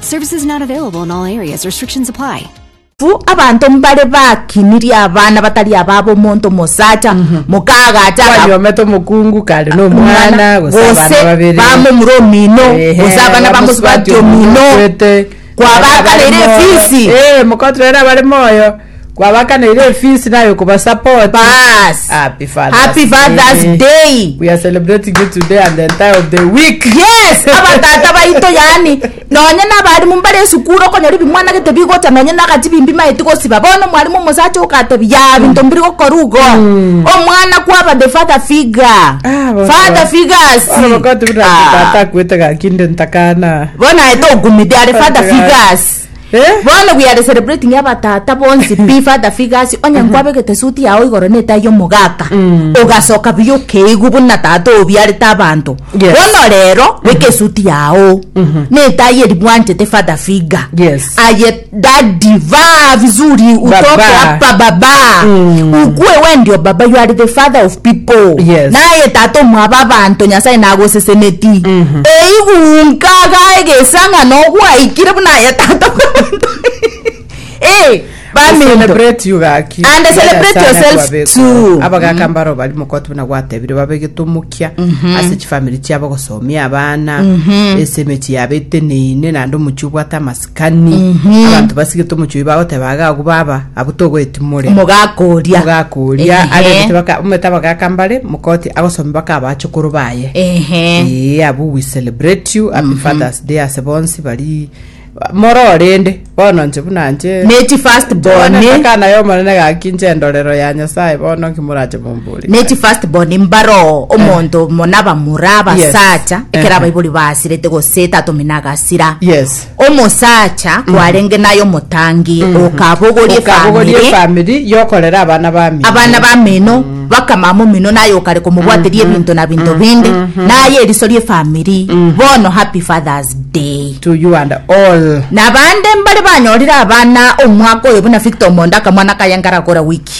Services not available in all areas. Restrictions apply. Abwo abanto mbare bakinirie abana batari ababo omonto omosacha mokaagacha agakwa Kwanyomete omokungu kare na omwana gose abana gose babere. bamomura omino Ehe, gose abana bamusubati bamusubati omino omino okwete. kwabakareire Abare moyo. efisi Eh, mokoturere abare moyo. kwabakaneire efees naye okobasupport Bas. happy fathers Happy Father's Day. we are celebrating you today and the entire of the week yes abatata baito yani nonye nabarimu mbare esukuru okonyora ebimwanagete bigocha nonye nagati bimbi maeti gosiba bono omwarimu omosacha ogatebia ya binto mbiri gokora igo omwana kwaba the father figure Ah, bono father ba- figures bono bakotubira ati Ah. tata akwete gaki nde ntakana bono aete ogumide are father Akwete gaki. figures Bono we are celebrating abatata bonsi pi father figures onye nkwabegete suit yao igoro na etai y'omogaka ogasoka buya okeigwa buna tata obiarete abanto Yes. bono rero beka esuit yao na etai eri bwanchete father figure Yes. aye daddy vaa vizuri utoke Baba. hapa baba ukue we ndio baba you are the father of people Yes. naye tata omwaba abanto nyasaye nagoseseneti Eiguunka agae egesang'ana ogwaikire buna aye tata bw'abanto. Eh, baminto. Celebrate you gaki. And celebrate yourself too. abagaka mbaro bari mokoti buna gwatebire babe getomokia ase chifamiri chiabo gosomia abana ase emechi yabo eteneine naende omochi obwate amasikani Kani abanto basigete omochie oyo bagoteba iga agwo baba abwo togoetimorera mogakoria mogakoria Ehe. arebete baka omete abagaka mbare mokoti agosomia baka abachokoro baye ehe ee abu we celebrate you happy fathers day ase bonsi bari mororende bono nche buna nche nechi first born akana yomonene gaki nche endorero ya nyasaye bono nki morache mombore Ne chi first born mbaro omonto eh. mona bamura basacha yes. ekera eh. baibori basirete gose tatumi nagasira yes. omosacha mm. kwarenge nayo omotangi mm. okabogorie family, family yokorera abana bami abana bamino mm bakamama omino naye okare komobwateria mm-hmm. ebinto na binto mm-hmm. binde mm-hmm. naye eriso rie famiri bono happy fathers day to you and all na bande mbare banyorire abana omwaka oyo buna victor omonda akamwana kayengara kora wiki